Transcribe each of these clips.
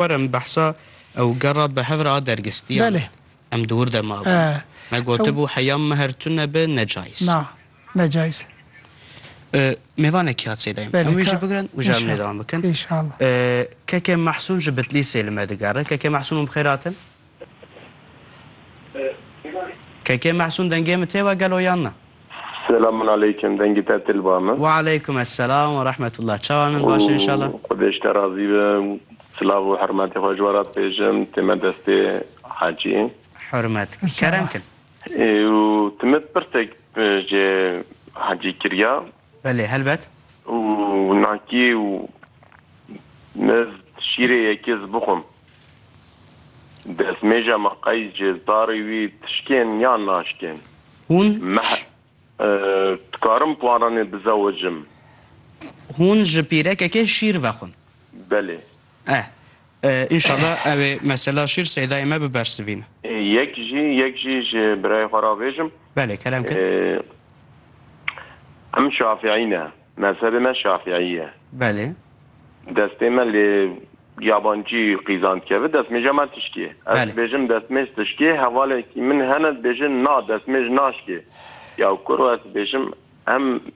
Werin behsa ew gera bi hev re a dergestiyan e. Em di wir de mabin. Me gotibû heya mehr tu nebe ne cayîz. Na, ne cayîz e. Mêvanekî hat sêdayîm. Em wî jî bigirin û ji em lêdewan bikin. Keke Mehsûn ji Bitlîsê li me digere. Keke Mehsûn û bi xêr hatin. Keke Mehsûn dengê min tê we gelo yan na? Selamun aleykum dengê te til ba min. Wa aleykum esselam wa rahmetullah çawan in baş in inşallah. Xwedê ji te razî be silav û hermetê xwe ji we re dibêjim tê me destê hecî. Hurmet kerem kin. Û ti min pirsek jê hecî kiriya Belê helbet. Û nakî û mez şîrê yekê zi bixwim. Destmêja me qeys jê zarê wî tişkên yan naşkên. Hûn Meh dikarim paranê bizewicim? Hûn ji pîrekekê şîr vexwin. Belê. Eh eh inşala ew ê mesela şîr seydayê me bibersivîne. Yek jî yek jî ji birayê xwe re bêjim. Belê kerem kir. Em şafîî ne. Mezhebê me şafîî ye. Belê. Destê me lê yabancî qîzan dikeve destmêja me tişkê. Ez dibêjim destmêj tişkê hevalekî min hene dibêje na destmêj naşkê. Ya kuro ez dibêjim em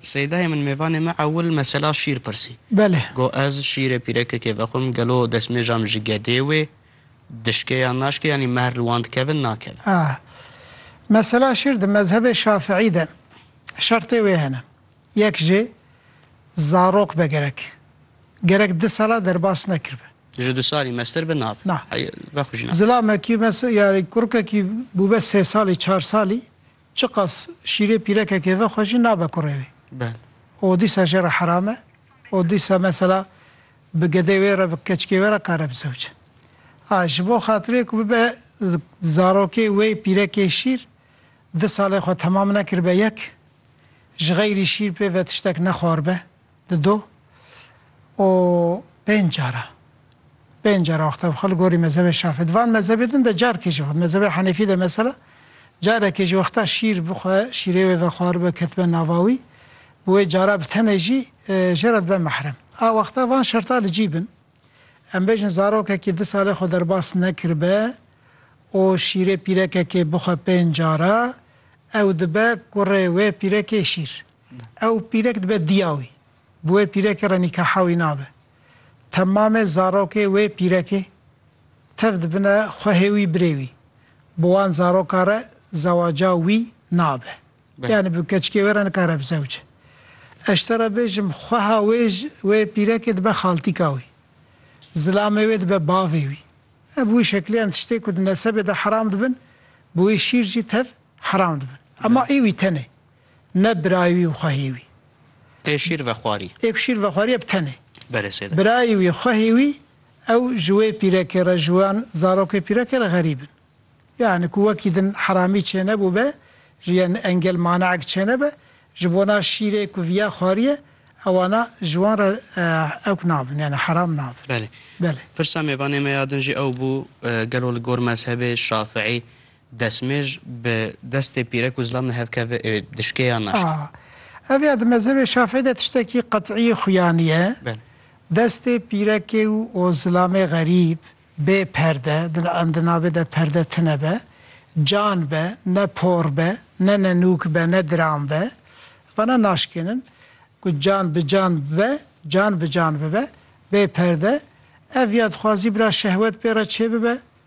Seydayê min mêvanê me ewil mesela şîr pirsî. Belê. Got ez şîrê pîrekekê vexwim gelo destmêjam ji gedê wê dişkê yan naşkê yanî mehr li wan dikevin nakevin. A. Mesela şîr di mezhebê şafiî de şertê wê hene. Yek jê zarok be gerek. Gerek di sala derbas nekirbe. Ji du salî meztir be nabe. Na. Hey vexw jî nabe. Zilamekî mes yani kurkekî bûbe sê salî çar salî Çiqas şîrê pîrekekê ve xwe jî nabe kurê wê. O dîsa jê re heram e. O dîsa mesela bi gedê wê re bi keçikê wê re kare bizewc. A ji bo xatirê ku bibe zarokê wê pîrekê şîr di salê xwe temam nekiribe yek, ji xeyrî şîr pê ve tiştek nexwaribe. Di du û pênc cara, pênc cara wexta bi xwe li gorî mezhebê Şafî, di van mezhebê din de carekê jî, mezhebê Henefî de mesela, carekê jî wexta şîr bi xwe, şîrê wê vexwaribe ketibe nava wî, bi wê cara bi tenê jî jê re dibe mehrem. A wexta van şerta li cî bin, em bêjin zarokekî du salê xwe derbas nekiribe û şîrê pîrekekê bixwe pênc cara, ew dibe kurê wê pîrekê şîr. Ew pîrek dibe diya wî. Bi wê pîrekê re nîkaha wî nabe. Temamê zarokê wê pîrekê tev dibine xwehê wî birê wî. Bi wan zaroka re zewaca wî nabe. Yanî bi keçikê wê re nikare bi zewce. Ez ji te re bêjim xweha wê ji wê pîrekê dibe xaltîka wî. Zilamê wê dibe bavê wî. E bi wî şekilê em tiştê ku di nesebê de heram dibin, bi wî şîr jî tev heram dibin. Ema ê wî tenê. Ne birayê wî û xwehê wî. Tê şîr vexwarî. Tê ku şîr vexwarî eb tenê. Berê sêde. Birayê wî, xwehê wî ew ji wê pîrekê re, ji wan zarokê pîrekê re xerîb in. Yanî ku wekî din heramî çênebûbe, ji yan engel maneek çênebe, ji bona şîrê ku viya xwarîye, ewana ji wan re ewk nabin, yanî heram nabin. Belê. Belê. Pirsa mêvanê me ya din jî ew bû, gelo li gor mezhebê Şafiî Destmêj bi destê pîrek û zilam nihevkeve ê dişkê yan naşke. A. Ev ya di mezhebê Şafîî de tiştekî qet'î xuya niye. Belê. Destê pîrekê û zilamê xerîb, bê perde, di em di navê de perde tine be, can be, ne por be, ne nenûk be, ne diram be, vana naşkênin. Ku can bi can bibe, can bi can bibe, bê perde, ev ya dixwazî bira şehwet pê re çêbibe,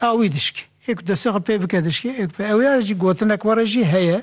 Awî dişk ê ku destê xwe pê bike dişkê ê ku pê ew ye jî gotinek were jî heye.